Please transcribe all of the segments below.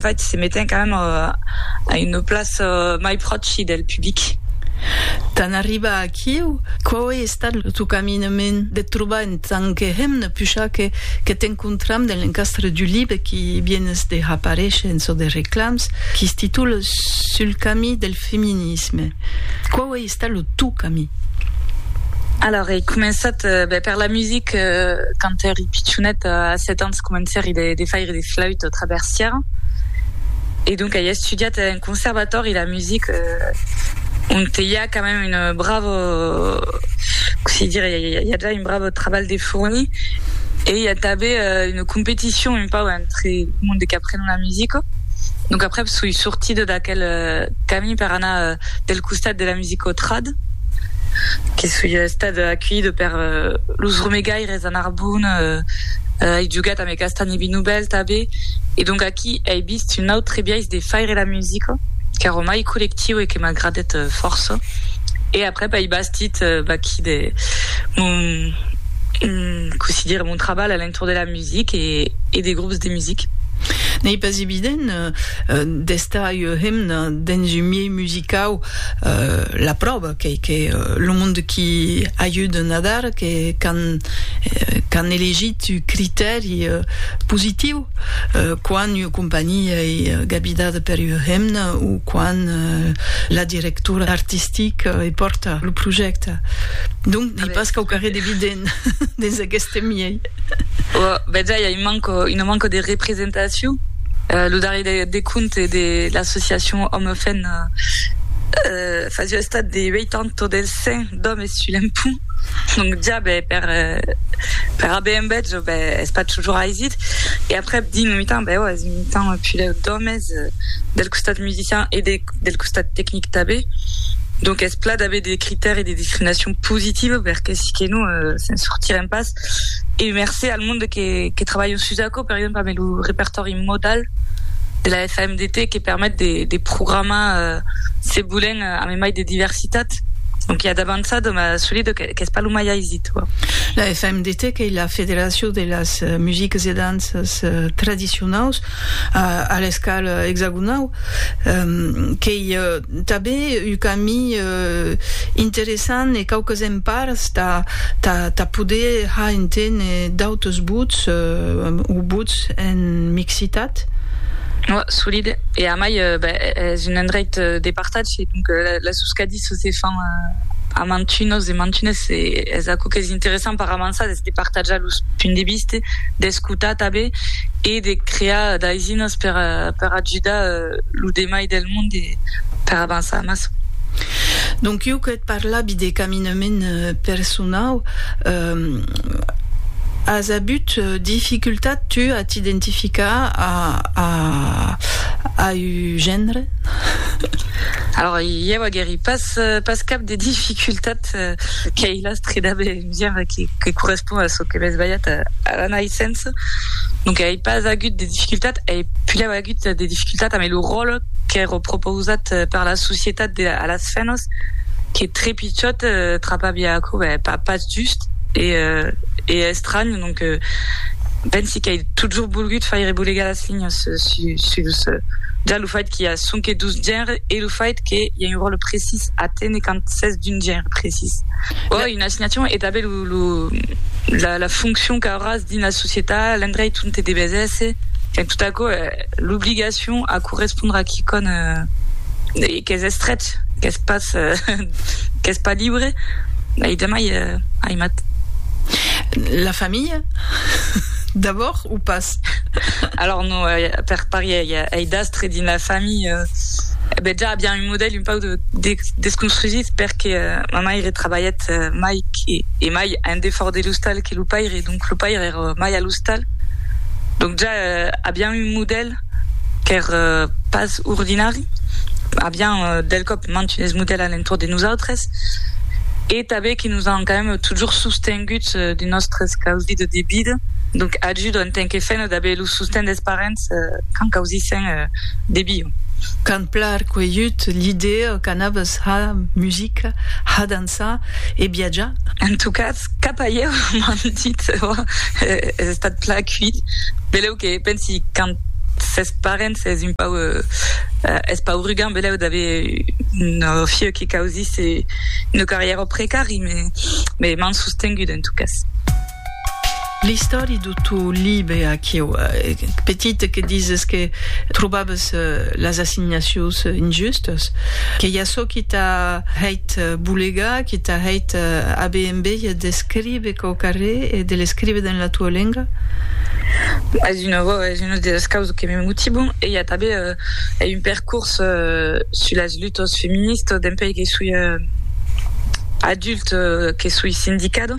Faig se meten quand même a une place mai pròchi del public. Tant arribar aquiu, quau ei estat lo teu caminament de trobar en tant que hemna pucha que que t'encontram dens l'encastre du libre qui vienes de haparéisher en çò de reclams qui se titula Sul camí del feminisme. Quau ei Sta lo tu camí. Alors ei començat ben per la music quand eri pichonet a 7 ans comenceri de faire de flaüt au traversier e donc ei estudiat en conservatòri la music ont ei a quand même une bravo cossí dire ei a ja un bravo trabalh de fourni e ei a tanben une competition un pau entre monde qu'aprenon la music donc aprèp soi sortida d'aquel camí per anar del costat de la musico trad, que soi estat aculhida per los romegaires de Narbon, ai jogat amé Castagni Binoubèl tabé, e donc aquí ai vist un autre biais de faire la musica, qu'èra mai collectiu e que m'agradèt fòrça, e aprèp ai bastit baquí de mon, cossí dire, mon trabalh a l'entorn de la music e de grops de music. N'ei pas evident d'estar ua hemna. dens un miei musicau la pròva qu'ei que lo monde qui ajude Nadar que qu'an qu'an elegit un critèri positiu quan ua companhia ei gabidada per ua hemna o quan la directora artistic ei pòrta lo projècte donc dei pas quauquarré d'evident dens aqueste miei. Betz a, i a un manco, una manco de representacion. Uh, lo darrier de, de compte de l'associacion Òme Fen, uh, fasiá estat de 80 dels 100 d'òmes sul empont. Donc ja, be, per, per aver un betz, be, es pas toujours aisit. E après, dins lo mitan, be, ò, es un mitan pus lèu d'òmes, del costat musician e de, del costat tecnic tanben donc es pla d'aver de critèri de discriminacion positiva perque si que non se'n sortirem pas e mercé al monde que que trabalhan sus aquò per exemple amb lo repertòri modal de la FMDT que permet de de programar se volent amb mai de diversitat donc i a d'avançada mas solida qu'es pas lo mai aisit la FMDT qu'ei la federacion de las musiques e danças tradicionaus a, a l'escal exagonau, qu'ei tanben un cami interessant e quauques empars tà, tà, tà poder har enténer d'autres vots o vots en mixitat. Oa, solide. E amai, ben, es un endreit de partatge, donc, la, la suscadi. çò se fan a mantunos e mantunes e es aquò qu'es interessant per avançar, es de partajar los punts de vista, d'escotar tanben e de crear d'aizinas per per ajudar lo demai del mond e per avançar amassa. Donc ieu que parlavi de caminament personau, as avut dificultat tu a t'identificar a a du genre. Alors ieu agueri pas pas cap de dificultat qu'ei la streda de genre que que correspond a çò que m'es balhat a la naissença, donc ei pas agut de dificultat, ei pulèu agut de dificultat amé lo ròle qu'èro propousat per la societat de a las femnas, que tre pichòt trapabia aquò, ben pas pas just e estranh. Donc, pensi qu'ai totjorn volgut faire bolegar las linhas sus ja lo fait qu'i a sonque dos genres e lo fait qu'i a un ròtle precís a téner quand s'es d'un genre precís. Oi, una assignacion e tanben lo la foncion qu'auràs dins la societat, l'endreit ont te deves èsser, enfin tot aquò, l'obligacion a correspondre a quicòm. Qu'es estrech, qu'es pas, qu'es pas libre, ei demai aimat. La familha d'abord o pas? Alors non, per parièr ei d'astre dins la familha, e ben ja aviam un modèl un pauc desconstrusit perque ma maire trabalhèt mai e mai en defòrt de l'ostal que lo paire, donc lo paire èra mai a l'ostal, donc ja aviam un modèl. qu'ère pas ordinari, avián del còp mantut es modèls a l'entorn de nosautres e tanben que nos an quand même totjorn sostengut de nòstres causi de debida, donc ajuda en tant que femna d'aver lo sosten des parents quand causissen de bio. Qu'an plan cuelhut l'idèa qu'anaves ha musica, ha dançar e viatjar. En tot cas, Cap ahièr m'an dit ò es estat plan cuit belèu que pensi quand s'es parents es un pauc es pauc rugant belèu d'aver un fieu que causisse una carrièra precari me m'an sostengut en tot cas. L'istòri de to libe aquiu, petit que dises que trobabes las assignacions injustas, qu'ei açò qui t'a hèit bolegar, qui t'a hèit aver enveja d'escribe quau carré e de l'escribe dens la tua lenga? Es una vòu, es una de las causas que me motiban. Ei a tanben ei un percors sus las lutas feministas dempèi que soi adult, que soi sindicada.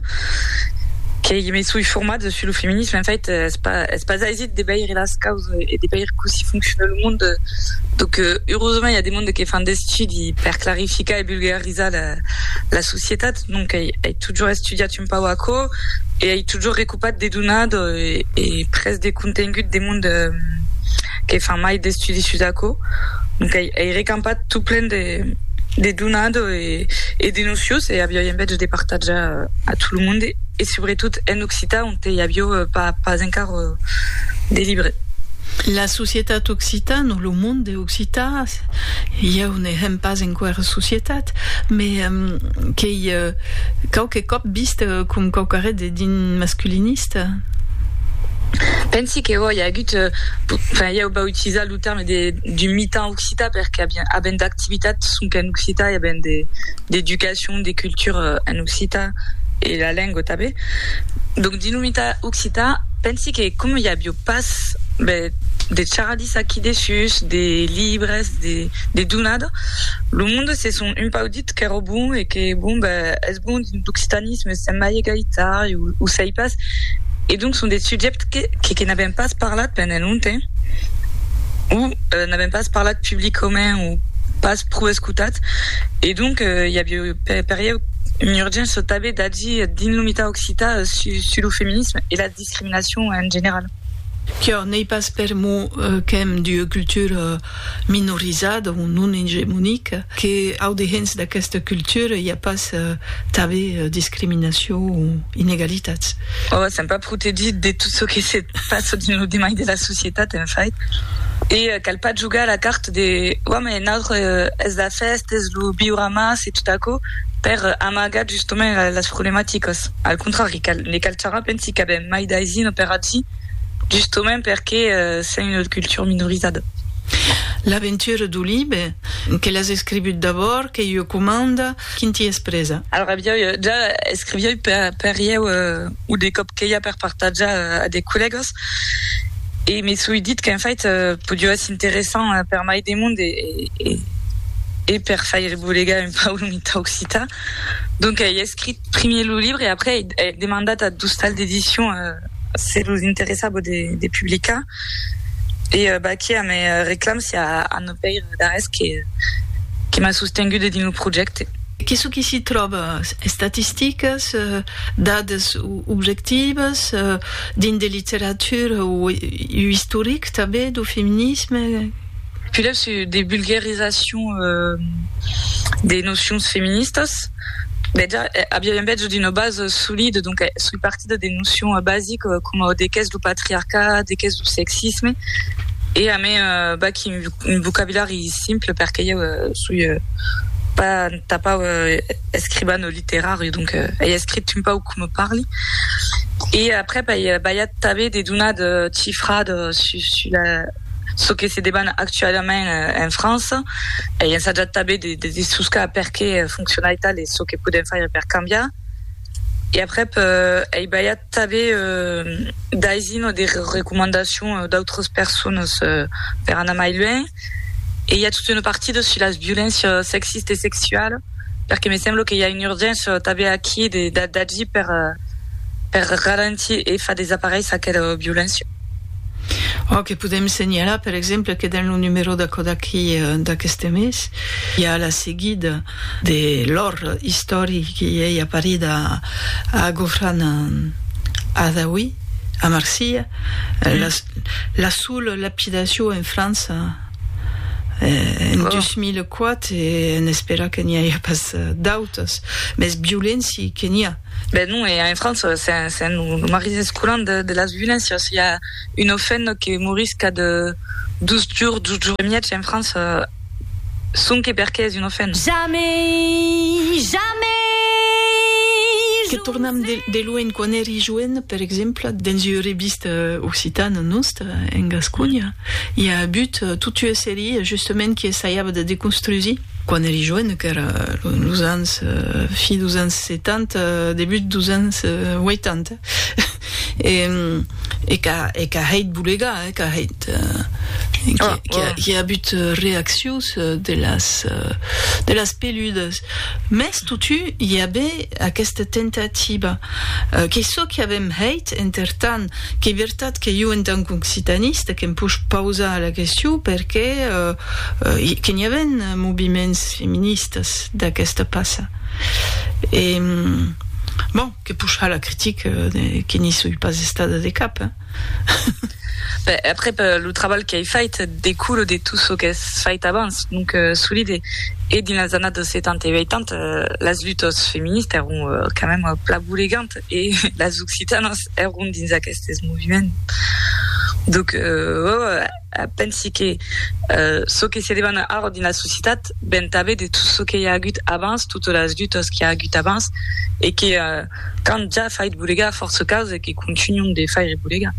Qu'ei me soi format dessus lo feminisme, en fait es pas es pas aisit de veire las causes e de veire cossí foncciona lo monde, donc eusement i a de monde que fan d'estudi per clarificar e vulgarizar la la societat, donc ei ei totjor estudiat un pauc aquò e ei totjor recopat de donar de e pres de contengut de monde que fan mai d'estudis sus aquò, donc ei, ei recampat tot plen de, de donado e, e de nocios, e avioi envètge de partatjar a tot lo monde, e subretot en occitan ont ei avió pas, pas encar de libre. La societat occitan o lo monde occitan, ieu ne hèm pas enquera societat, me qu'ei quauque còp vist com quauquarret de din masculinista. Pensi que oi, i a agut, enfin ieu vau utilizar lo terme de d'un mitan occitan perque aviam avèm d'activitats sonque en occitan e avèm de d'educacion, de cultura en occitan e la lenga tanben. Donc dins lo mitan occitan pensi que coma i avió pas de de charadissa aquí dessús, de libres, de de donada, lo monde se sent un pauc dins dit qu'èra bon e que bon ben es bon dins l'occitanisme sèm mai egalitari o sei pas e donc son de subjèctes que que n'avèm pas parlat pendent longtemps o n'avèm pas parlat publicament o pas pro escotat e donc i aviá per ieu un urgent çò tanben d'agir dins lo mitat occitan sus lo feminisme e la discriminacion en general. Quiò n'ei pas per mon qu'èm d'ua cultura minorizada o non egemonica que au dehens d'aquesta cultura i a pas tanben discriminacion o inegalitats. Òc, sèm pas protegits de tot çò que se passa dins lo demai de la societat, en fait, e cal pas jogar a la carta de oi mai naut es la fèsta, es lo viure mas e tot aquò per amagar justament las problematicas. Al contrari, ne cal charrar, pensi qu'avèm mai d'aisir un paratge justament perque sèm una cultura minorizada. L'aventura du libe, que l'as escrivut d'abòrd, qu'ei ua comanda, quin t'i es presa? Alora aviái ja escriviái per ieu o de còp queia per partatjar a de collègas e me soi dit qu'en fait podió èsser interessant per mai de monde e per faire bolegar un pauc lo mitar occitan. Donc ei escrit primier lo libre e après ei demandat a d'ostal d'edicion se los interessabo de de publicar e baquier a me reclam si a a no pèir d'arrés que que m'a sostengude dins lo projècte. Que çò que s'i tròba, estatisticas, dades objectivas, dins de literatura o istoric tanben, dau feminisme? Quilha se de vulgarizacion de nocions feministas bèja aviá un bètz d'una base solide donc soi partida de nocions basiques coma de qu'es lo patriarcat, de qu'es lo sexisme e amé b'ac un vocabulari simple perque ieu soi pas entà pas escrivan o literari donc ei escrit un pauc coma parli e après b'ai balhat tanben de donar de chifrades sus la çò que se deban actualament en França, ei ensajat tanben de de dessoscar perqué fonciona aital e çò que podem faire per cambiar. E aprèp ei balhat tanben d'aisir o de recomandacion d'autras personas per anar mai luènh. E i a tota una partida sus las violéncias sexistas e sexualas, perqué me sembla que i a una urgéncia tanben aquí de d'agir per per ralentir e far desaparéisser aquela violéncia. Òc, e podèm senhalar, per exemple, que dens lo numèro d'aquò d'aquí d'aqueste mes, i a la seguida de l'òr istoric qui ei aparit a Ghofran Adawi, a Marsilha, la sola lapidacion en França en 2004, e n'espèra que n'i aja pas d'autas, mès violenci que n'i a. Ben non, e en França se'n marrís escolant de las violéncias. I a un ofènor que morís cap de dos jorns, dos jorns e mièg en França, sonque perque es un ofènor. Jamei! Jamei! Que tornam de luenh, quan èri joen, per exemple, dens ua revista occitana nòstra, en Gasconha, i a abut totues series, justement, qui essaiava de deconstrusir, Quan èri joen, qu'èra los ans, fi dos ans 70, debut dos ans 80, e qu'a hèit bolegar, qu'a hèit, qu'i a agut reaccions de las peludas. Mès totu i a be aquesta tentativa, qu'ei çò qu'i avèm hèit, entertant, Qu'ei vertat que jo en tant qu'occitanista que'm poish pausar la question perqué que n'i aven moviments feministas d'aquesta passa e bon, que poish har la critica que n'i soi pas estada de cap hein. Ben aprèp lo trabalh qu'ei fait decoule de tot çò qu'es fait abans, donc solide e dins las annadas 70 e 80 las lutas feministas èron quand mèmes pla bolegant. e las occitanas èron dins aquestes moviments donc pensi que çò que se demana ara dins la societat ven tanben de tot çò que i a agut abans totas las lutas qu'i a agut abans e que qu'an ja fait bolegar fòrça causas e que continuam de faire bolegar.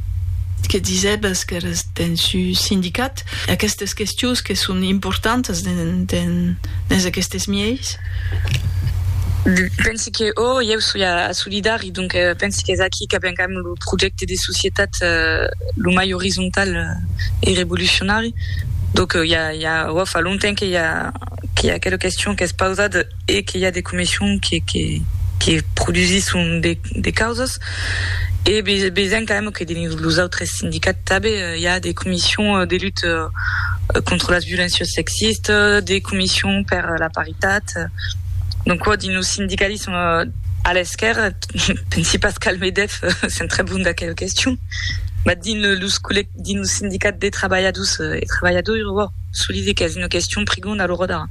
Que disèbas qu'èras dens un sindicat? Aquestes questions que son importantas dens aquestes mièis. Pensi que o, ieu soi a Solidari, donc pensi qu'es aquí qu'abencam lo projècte de societat lo mai orizontal e revolucionari. Donc i a, i a, o fa longtemps que i a, que i a aquela question qu'es pausada. e que i a de comissions que que produsisson de causas e besoin quand même que dins los autres sindicats tanben i a de comissions de lutte contre las violéncias sexistes, de comissions per la paritat, donc quò dins lo sindicalisme a l'esquèrra, pensi pas qu'al Medef s'entrabonda aquela question, mas dins los collec. dins lo sindicat de trabalhadors e trabalhadoiras, solide qu'es una question prigonda a l'ora d'ara.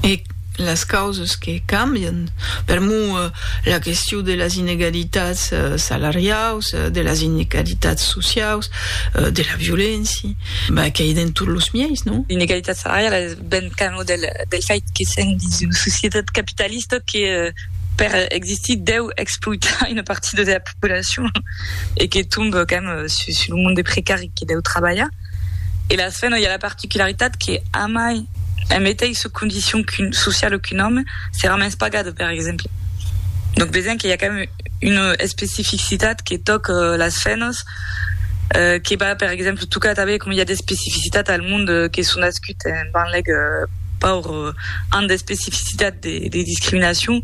E las causas que cambian, per mo, la question de las inegalitats salariaus, de las inegalitats sociaus, de la violéncia, ben qu'ei dens tot los mièis, non? L'inegalitat salariala es ben cama del fait que sèm dins una societat capitalista que per existir deu exploitar una partida de la. populacion e que tombe quand même sus sus lo monde des precari que deu trabalhar e las femnas i a la particularitat que amai en meteissa condicion sociala qu'un òme serà mens pagada per exemple donc vesèm que i a quand même una especificitat que tòca las femnas que va per exemple tocar tanben coma i a d'especificitat al monde que son nascuts Te'n banlèc paur an d'especificitat de discriminacion.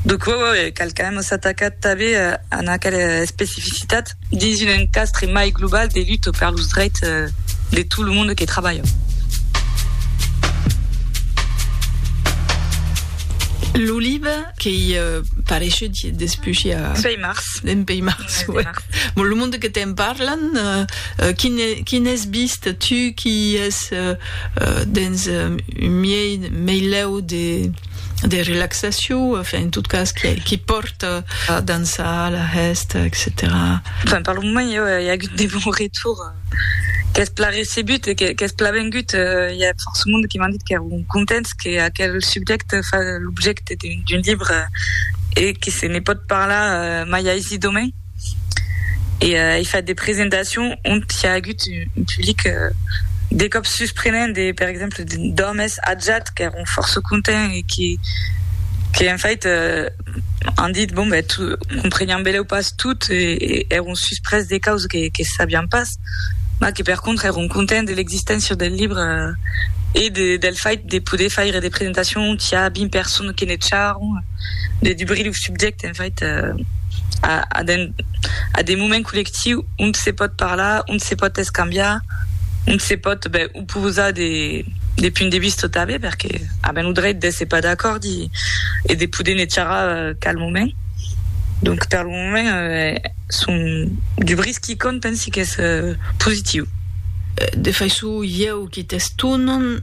Donc uè uè uè cal quand même s'atacar tanben an aquela especificitat dins un encastre mai global de lutte per los dreits de tot lo monde que trabalha. L'oliva qu'ei pareishut despushi a. Suei mars. Dempèi março, ec. Bon, lo monde que te'n parlan, quin es vist tu qui es dens un miei meilèu de relaxacion, enfin, en tot cas, qui pòrt a dançar, la hèsta, etcetèra? Enfin, per lo moment, jo, i a agut de bons retours. Qu'es plan recebut, qu'es plan vengut, i a fòrça monde que m'an dit qu'èron contents que aquel subjècte fa l'objècte d'un libre e que se ne pòt parlar mai aisit òmi. E ai fait de presentacions ont i a agut un public de còps susprenent, de per exemple d'òmes atjats qu'èron fòrça contents e que, en fait, an dit, bon, ben, compreniam belèu pas tot, e èron susprés de caus que sabiam pas, mas que per contra èron contents de l'existéncia del libre e del fait de poder faire de presentacion tà 20 personnes que ne charron, de dubrir lo subjècte, en fait, a de moments collectius ont se pòt parlar, ont se pòt escambiar, ont se pòt, ben, posar de punt de vista tanben perque aven lo dreit d'èsser pas d'acòrd e de poder ne charrar calmament donc per lo moment son du bris qui compte pensi qu'es positiu. De faiçon ieu qui t'estonam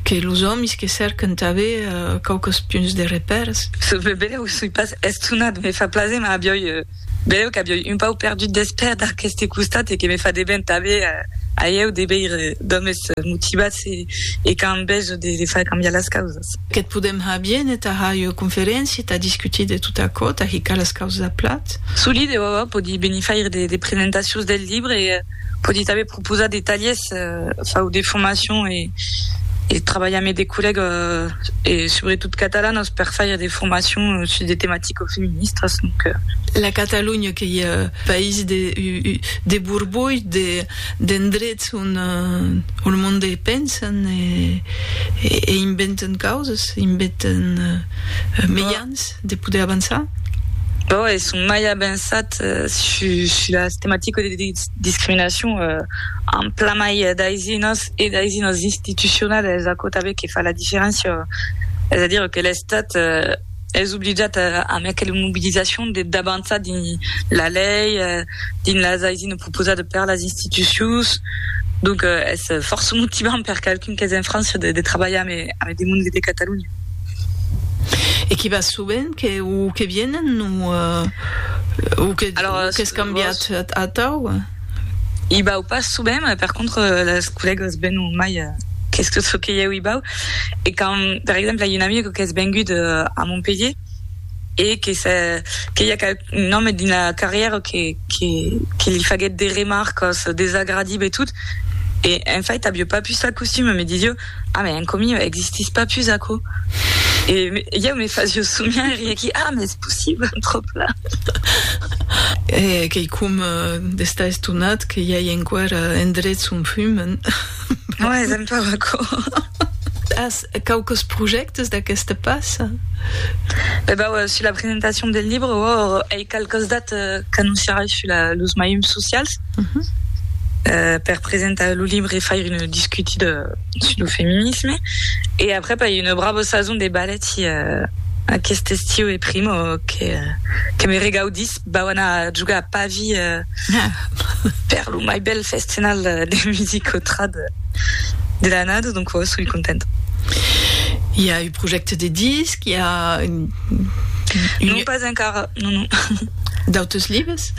que los òmis que cèrquen tanben quauques punts de repèrs. Se me beleu soi pas estonat, me fa plaser, mas avioi Beleu qu'aviò un pauc perdut d'espèr d'aqueste costat e que me fa de ben tanben a ieu de veire d'òmes motivats e qu'an enveja de far cambiar las causas. Que't podèm har bien e tà har ua conferéncia e tà discutir de tot aquò, tà hicar las causas a plat. Solide, òò, pòdi benir faire de presentacions del libre e pòdi tanben Composar de talhes fau de formacion e e trabalha amé de collèga e subretot catalanas per faire de formacion sus de tematicas feministas donc la Catalonha qu'ei ua país de de borbolh de d'endrets on on lo monde pensen e e inventen causas inventen mejans. de poder avançar? Bon, es son mai avançat sus las tematicas de discriminacion en plan mai d'aisinòs e d'aisinòs institucional es aquò tanben que fa la diferéncia, es a dire que l'Estat es obligat amb aquela mobilizacion de d'avançar dins la lei, dins las aisinas proposadas per las institucions, donc es fòrça motivant per qualqu'un qu'es en França de trabalhar amb de monde de Catalonha. E qui va sovent que o que vienen o o que Alors, o qu'es cambiat atau? I bau pas sovent, mai per contra las collègas venon mai que tot çò que ieu i bau. E quand per exemple i un amic qu'es vengut a Montpellier e que se que i a qual un òme dins la carrièra que que que li faguèt de remarcas desagradibe e tot e en fait avió pas pus la costum me disió Ah, mès enco miu, existís pas pus aquò? E ieu me fasíeu somiar e riéqui, ah, mès es possible, trop pla! E queicòm d'estar estonat que i ai enquara endrets on fumen. Mès es empau aquò. As quauques projèctes d'aqueste pas? Be bau, sus la presentacion del libre, òr, ei qualques dat qu'annonciarai sus los maiums socials. per presentar lo libre e faire una discutida sus lo feminisme e après pas una brava sason de ballet aqueste estiu e primo que me regaudís vau anar a jogar a Pavi per lo mai bèl festival de musica trad de l'annada donc oi soi contenta. I a un projècte de disc? I a un... Non pas encara, non non. D'autres libres?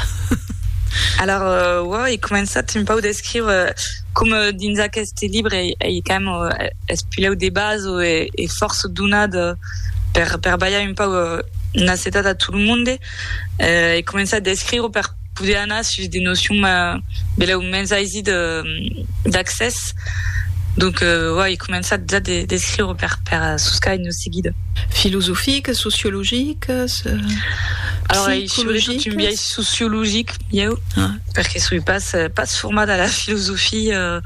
Alara oa ei començat un pau d'escriure coma dins aqueste libre ei quand même espulèu de base o e fòrça donat per per balhar un pau n'acetat a tot lo monde ei començat d'escriure per poder anar sus de nocions belèu mens aisi de d'accès donc oa ei començat ja d'escriure per per soscar seguida. Filosofiques, sociologiques, psicologiques? Un biais sociologic, ieu, perque soi pas pas formada a la filosofia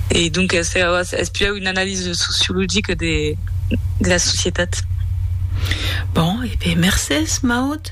e donques es pieu una analisa sociologica de la societat. Bon, e ben mercés, Maud.